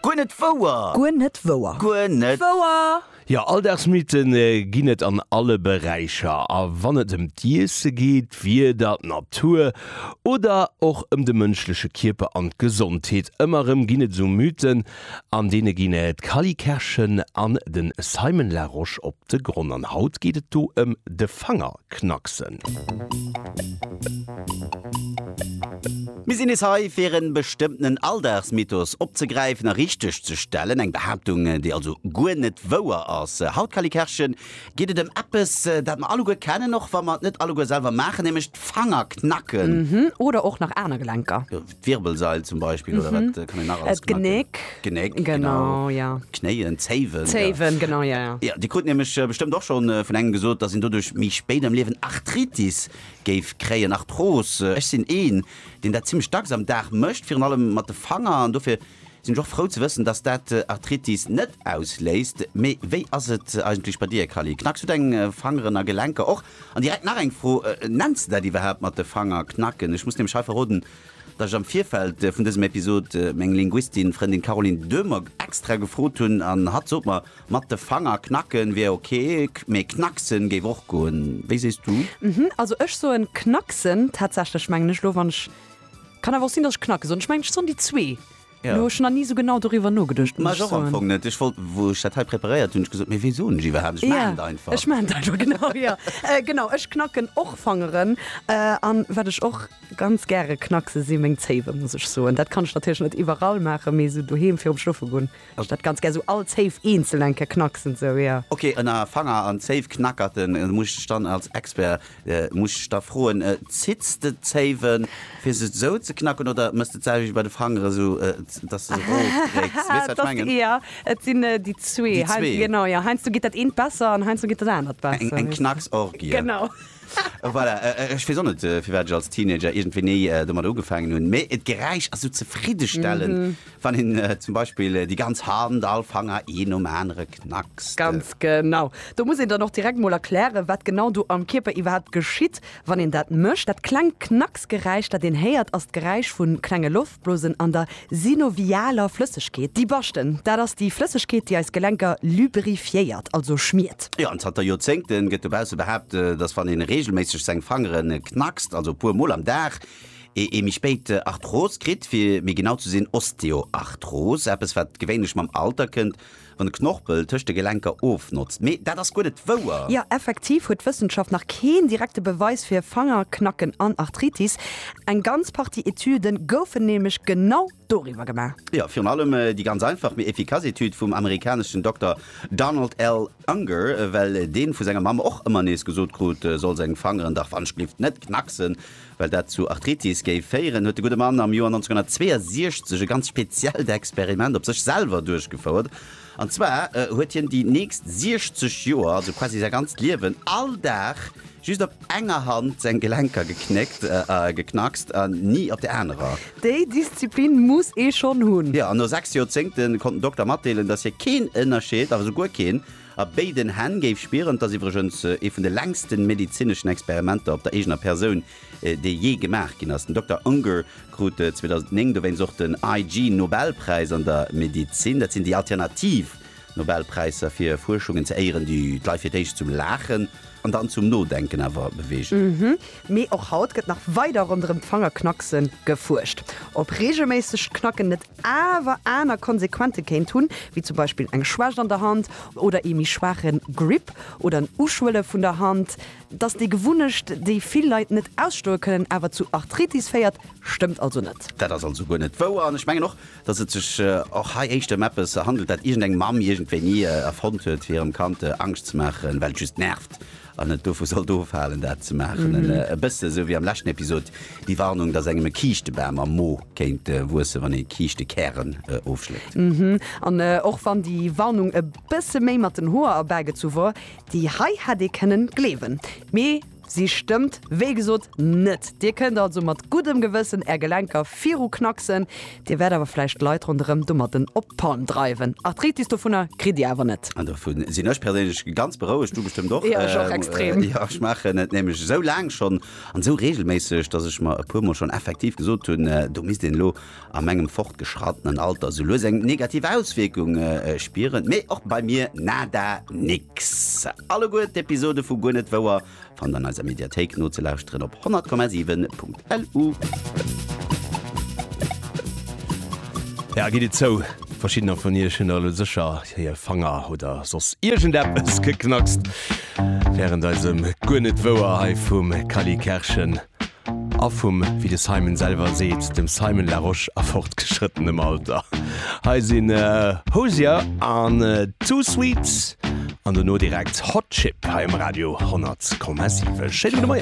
Guer net wouer! Guer net wouer! Guer net wouer! Jo, Alldagsmythe ginn et an alle Beräicher. A wann et ëm d'Iesse geet, d'Wieder, d'Natur oder och ëm de mënschleche Kierper an d'Gesondheet, ëmmer erëm ginn et esou Mythen. An deene ginn d'Cally Kerschen an de Simon Larosche op de Gronn. An haut geet et do ëm de Fanger. knacksen. Mir sinn nees hei fir en bestëmmtenen Alldagsmythos opzegräifen a richteg ze stellen, eng Behaaptung déi also guer net wouer ass. Haut, Calikerchen, geet et ëm eppes dat mer alleguer kennen, och wa mer et net alleguer selwer maachen, nämlech d'Fanger knacken. Oder och nach aner Gelenker. D'Wirbelsail zum Beispill oder wat kann een nach alles gemacht ginn? D'Genéck. D'Genéck, genau. Genau, ja. D'Knéien, d'Zéiwen. D'Zéiwen, genau, ja, ja. Ja, Dir krut nämlech bestëmmt och schonn vun engem gesot, datt een doduerch méi spéit am Liewen Arthritis géif kréien, Arthrose. Ech sinn een, deen dat zimlech dacks am Dag mécht, virun allem mat de Fanger an dofir Sinn ech och frou ze wëssen dass dat Arthritis net ausléist. Mee wéi ass et eigentlech bei dir Kally? Knacks du deng Fangeren a Gelenker och? An direkt nach eng Fro, Nenns de dat iwwerhaapt mat de Fanger knacken? Ech muss nämlech hei verroden dass ech am Virfeld vun dësem Episod meng Linguistin Frëndin Caroline Döhmer extra gefrot hunn an hatt sot mer mat de Fanger knacken wier ok, mee knacksen géif och goen. Wéi sees du? Also ech soen knacksen tatsächlech, mengen ech lo wann ech Kann awer och sinn dass ech Knackes soen, ech mengen ech soen déi zwee. Lo hu ech nach ni sou genau doriwwer nogeduecht, muss ech soen. Ech wollt, wou ech dat hei preparéiert hunn, ech gesot, mee wéi soen ech iwwerhaapt, ech maachen et einfach. Ech maachen et einfach, genau, jo. Genau, ech knacken och Fangeren. An wat ech och ganz gäre knackse si meng Zéiwe, muss ech soen. Dat kann ech natierlech net iwwerall maachen, mee sou doheem virum Schlofe goen. Also dat ganz gär sou all Zéif eenzeln eng Kéier knacksen sou, jo. Ok, ënner Fanger an Zéif knackerten, muss ech dech dann als Expert, muss ech dech da froen, zitts de d'Zéiwen fir se sou ze knacken oder mëss de d'selwecht bei de Fangeren sou dass de se erofdrécks? Weess wat ech mengen? Jo, et sinn déi zwee. Genau, jo, heiansdo geet dat eent besser an heiansdo geet dat anert besser. Eng Knacksorgie. Genau. Voilà, ech weess och net firwat ech als Teenager iergendwéini domadder ugefaangen hunn, mee d'Geräisch ass sou zefriddestellend. Wann een zum Beispill déi ganz Hand, all Fanger een nom anere knackst. Ganz genau. Do muss een dann och direkt mol erklären, wat genau do am Kierper iwwerhaapt geschitt, wann een dat mécht. Dat klengt Knacksgeräisch, dat een héiert, ass d'Geräisch vu klenge Loftblosen an der synovialer Flëssegkeet. Déi Baschten, dat ass déi Flëssegkeet, déi eis Gelenker lubrifiéiert, also schmiert. Jo, an zanter Joerzéngte gëtt dobausse behaapt, dass wann ee reegelméisseg seng Fangere knackst, also e puer mol am Dag, ee ee méi spéit Arthros kritt, fir méi genau ze sinn Osteoarthros, eppes wat gewéinlech mam Alter kënnt, wann de Knorpel tëscht de Gelenker ofnotzt. Mee dat ass guer net wouer. Jo, effektiv huet d'Wëssenschaft nach keen direkte Beweis fir Fangerknacken an Arthritis. Eng ganz Partie Etüde goufen nämlech genau doriwwer gemaach. Jo, virun allem déi ganz einfach mee efficace Etüd vum amerikaneschen Dokter Donald L. Unger, well deen vu senger Mamm och ëmmer nees gesot krut, e soll seng Fangeren dach wann Schlift net knacksen, well dat zu Arthritis géif féieren, huet de gudde Mann am Joer 1962 e ganz speziellt Experiment op sech selwer duerchgefouert. An zwar huet hien déi nächst 60 Joer, also quasi säi ganzt Liewen, all Dag just op enger Hand seng Gelenker geknéckt, geknackst, an ni op der anerer. Déi Disziplin muss ee schonn hunn! Jo, an no 6 Joerzéngte konnt den Dokter matdeelen, dass hie keen Ënnerscheed, awer esou guer keen, a béiden Hänn géif spieren. Et ass iwwregens ee vun de längste medezineschen Experimenter op der eegener Persoun, dee jee gemaach ginn ass. Den Dokter Unger krut 2009 dowéinst och den IG Nobelpräis an der Medezin. Dat sinn déi alternativ Nobelpräisser fir Fuerschungen ze éieren, déi d'Leit fir d'éischt zum Laachen an dann zum Nodenken awer beweegen. Mhm. Mee och haut gëtt nach weider ronderëm d'Fangerknackse gefuerscht. Ob reegelméissegt Knacken net awer aner Konsequente kéint hunn, wéi zum Beispill eng Schwächt an der Hand oder ee méi schwaache Grip oder en Uschwëlle vun der Hand. Dass déi Gewunnecht, déi vill Leit net ausstoe kënnen, awer zu Arthritis féiert, stëmmt also net. Dat ass also guer net wouer. An ech mengen och, dass et sech och hei éischter ëm eppes handelt, dat iergendeng Mamm iergendwéini erfonnt huet, fir hirem Kand Angscht ze maachen, well et just nervt an et dovu sollt ofhalen, dat ze maachen. E bësse esou wéi am leschten Episod déi Warnung, dass engem e Kiischtebam am Mo kéint wuessen, wann ee Kiischtekären ofschléit. An och wann déi Warnung e bësse méi mat den Hoer erbägezu wor, Déi hei hätt ee kënnen gleewen, mee si stëmmt wéi gesot net. Dir kënnt also mat guddem Gewëssen Är Gelenker viru knacksen, Dir wäert awer vläicht d'Leit ronderëm domatten op d'Palm dreiwen. Arthritis dovunner kritt Dir awer net. An dovu sinn ech perséinlech ganz berouegt, du bestëmmt och. Jo, ech och extrem. Jo, ech maachen et nämlech esou laang schonn an esou reegelméisseg, dass ech mer e puer Mol schonn effektiv gesot hunn, do misst een elo a mengem fortgeschrattenen Alter sou lues eng negativ Auswierkung spieren, mee och bei mir nada nix. Alleguer d'Episode vu Guer net wouer fannt an eiser Mediathéik nozelauschteren op 100,7.lu. Jo, gitt et zou, verschiddener vun iech hunn elo sécher hir Fanger oder soss iergendeppes geknackst wärend eisem Guer net wouer hei vum Kally Kerschen. A vum, wéi de Simon selwer seet, dem Simon Larosche a fortgeschrëttenem Alter. Hei sinn Hozier an Too Sweet an dono direkt Hot Chip hei um Radio 10,7. Schéine gudde Moien.